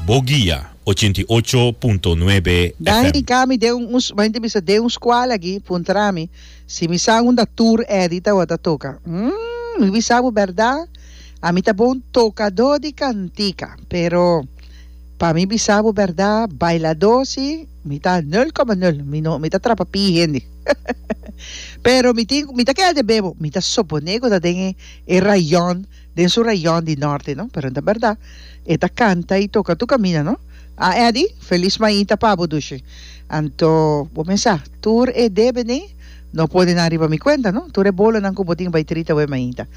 Bo guia, ochenta i ocho punto nuebe Dani di FM. Cami den un un hende bisa den un scual aki puntra mi si mi sa unda tur Eddy tawata toca mm mi bisa bo berda ami ta bon tocado di cantica pero pa mi bisa bo berda bailado si mi ta nul coma nul mi no mi ta trapa pi hende pero mi tin mi ta keda den bebo mi ta supone cu ta den e rayon den su rayon di norte no pero ta berdad e ta canta y toca tu camina no a Eddy felis mainta pa bo dushi anto bo mesa tur e debene no pone nan riba mi cuenta no tur e bolo nan cu bo tin bay trita we mainta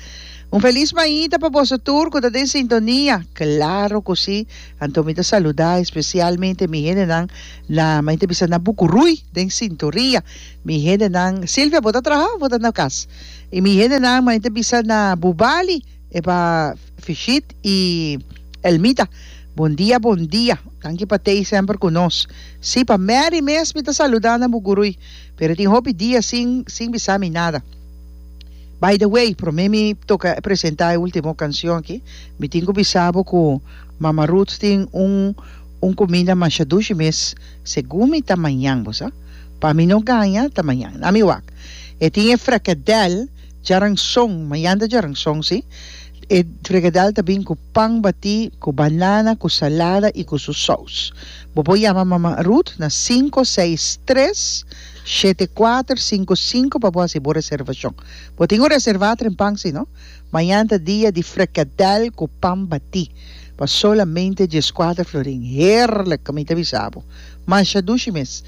un felis mainta pa boso tur cu ta den sintonia claro cu si anto mi ta saluda especialmente mi hende nan na maite bisa na bucuruy den sintoria mi hende nan Silvia bo ta traha o bo ta na cas. Y mi hendenan mani ta bisa na Bubali e pa Fishit y Elmita. Bon dia bon dia. Danki pa t'ey semper cu nos. Si pa Mary mes mi ta saluda na Bugurui pero e tin hopi dia sin sin bisa mi nada. By the way prome mi toca presenta e ultimo cancion aki mi tin cu bisa bo cu Mama Ruth tin un un cuminda masha dushi mes segun mi ta mañan bo sa. Pa mi no gaña ta mañan na mi wak. E tin e frekadèl djaranson, mayanda djaranson si, e frekadèl ta bin ku pan batí, ku banana, ku salada i ku su sous. Bo por yama Mama Ruth na sinku seis tres shete kuater sinku sinku pa bo hasi bo reservashon. Bo tin ku reservá trempan si no. Mayanta dia di frekadèl ku pan batí pa solamente dieskuater florin. Heerlijk mi ta bisa bo. Masha dushi mes.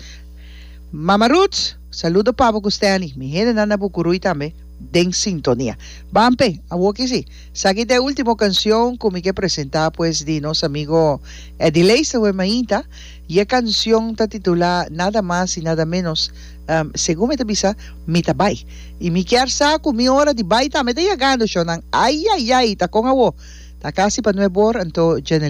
Mama Ruth! Saludo Pabo cu Stanley, mi hendenan na Bucuruy tambe den sintonia. Ban pe, awor ki si. Saki ta e ultimo cancion cu mi ke presenta pues di nos amigo Eddy Leester wey mainta y e cancion ta titula Nada mas y nada menos segun mi ta bisa mi ta bay y mi kier sa cu mi ora di bay tambe ta yagando shonan ayayay ta con awor ta casi pa nuebor anto Jenny